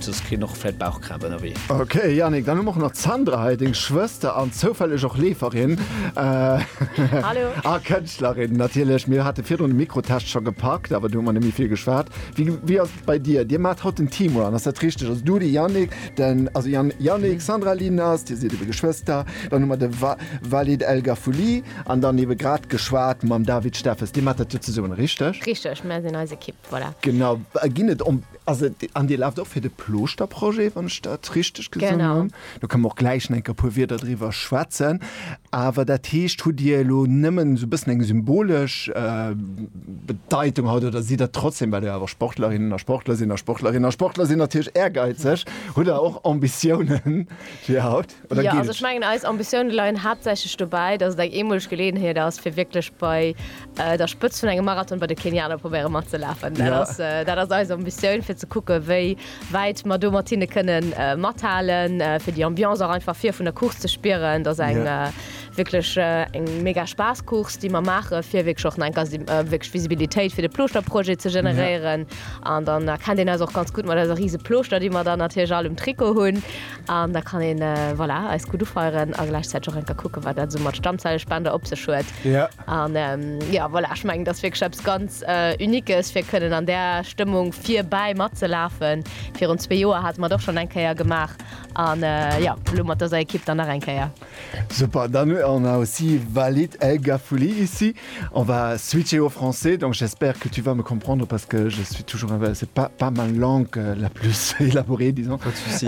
Soss kreen och vläit Bauchkrämp ënnerwee. Ok Yannick, dann hu mer och nach d'Sandra hei, deng Schwëster an zoufälleg och Leeferin a Kënschtlerin natierlech. Mir hate virdrun de Mikrotest scho gepackt, awer do hu mer net méi vill geschwat. Wéi ass et bei dir? Dir maacht haut den Team Run, ass dat richteg? Also du, de Yannick, den, also Yannick, Sandra, Linus, dir sidd ebe Geschwëster, dann hu mer de Walid El Gaffouli an dann ebe grad geschwat mam David Steffes. Dir maacht dat jo zesummen, richteg? Richteg, mir sinn eis Ekipp, voilà. Genau. Ginn et. Also, an Dir laaft och fir de Plooschterprojet, wann ech dat richteg gesinn hunn. Genau. Do kënnen mer och gläich enker e puer Wierder driwwer schwätzen. Awer dat heescht, hutt Dir elo nëmmen esou e bëssen eng symbolesch Bedeitung haut oder sidd Der trotzdem, well Der awer Sportlerinnen a Sportler sinn a Sportlerinnen a Sportler sinn natierlech ehrgeizeg, hutt Der och Ambitiounen fir haut oder geet et? Jo, also ech mengen, eis Ambitioune leien haaptsächlech dobäi, dass et eng eemoleg Geleeënheet ass, fir wierklech bei der Spëtzt vun engem Marathon bei de Kenianer probéiere matzelafen. Dat ass, dat ass eis Ambitioun, fir ze kucke wéi wäit mer do mat hinne kënne mathalen, fir déi Ambiance och einfach vir vun der Course ze spieren. Dat ass eng wierklech eng mega Spaasscourse, déi mer maache fir wierklech och enker wierklech Visibilitéit fir de Plooschterprojet ze generéieren. An dann erkennt een eis och ganz gutt mat eiser rise Plooschter, déi mer dann natierlech all um Trikot hunn. An da kann een, voilà, eis gutt ufeieren a gläichzäiteg och enker kucke wat dat esou mat Stammzellespender op sech huet. An jo, voilà, ech mengen, dat ass wierklech eppes ganz Uniques, fir kënnen an där Stëmmung virbäi matzelafen. Virun zwee Joer hate mer et och schonn eng Kéier gemaach an jo, elo mat dëser Ekipp dann nach eng Kéier. Super, dann on a aussi Walid El Gaffouli ici. On va switcher au français, donc j'espère que tu vas me comprendre parce que je suis toujours, c'est pas ma langue la plus élaborée, disons. Pas de soucis.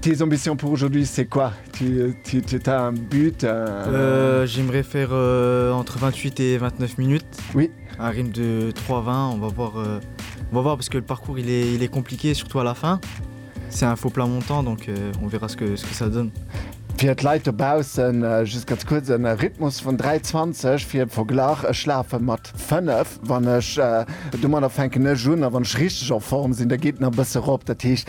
Tes ambitions pour aujourd'hui c'est quoi? Tu tu tu t'as un but? Euh j'aimerais faire entre 28 et 29 minutes. Oui. Un rythme de 3 20 on va voir euh, on va voir parce que le parcours il est il est compliqué surtout à la fin. C'est un faux plat montant donc euh, on verra ce que ce que ça donne. Fir d'Leit dobaussen just ganz kuerz en Rhythmus vun 3 20 fir Verglach, ech lafe mat 5 wann ech domadder fänken ech un a wann ech richteg a Form sinn, da geet en e bësse rop, dat heescht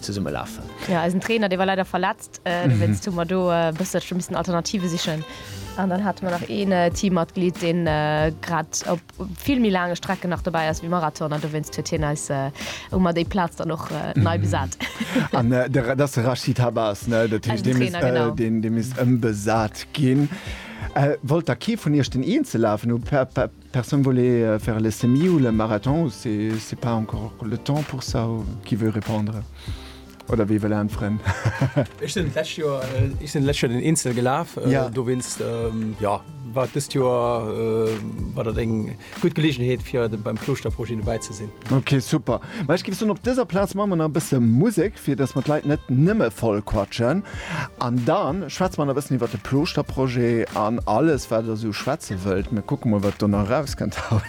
zesumme lafen. Jo eisen Trainer dee war leider verletzt dowéinst hu mer do e bësselche missen Alternative sichen an dann hate mer nach een Teammatglied deen grad op vill méi laange Strecken nach dobäi ass wéi Marathon an dowéinst huet hien eis hu mer déi Plaz dann och nei besat. An dat ass de Rachid Habas ne, dat heescht dee misst dee misst ëmbesat ginn. Wollt da kee vun iech den Eenzellafen hu? Personne voulait faire le semi ou le marathon ou c'est pas encore le temps pour ça ou qui veut répondre oder wee wëll äntweren? Ech sinn d'lescht Joer, ech sinn d'lescht Joer den Insel gelaf, dowéinst jo war dëst Joer war dat eng gutt Geleegenheet fir beim Klouschter-Projet dobäi ze sinn. Ok super, ma ech géif soen op dëser Plaz man mer nach e bësse Musek fir dass mer d'Leit net nëmme voll quatschen an dann schwätze mer nach e bëssen iwwert de Plooschter-Projet an alles wat der sou schwätze wëllt. Mir kucke mol wat do nach eraus kënnt haut.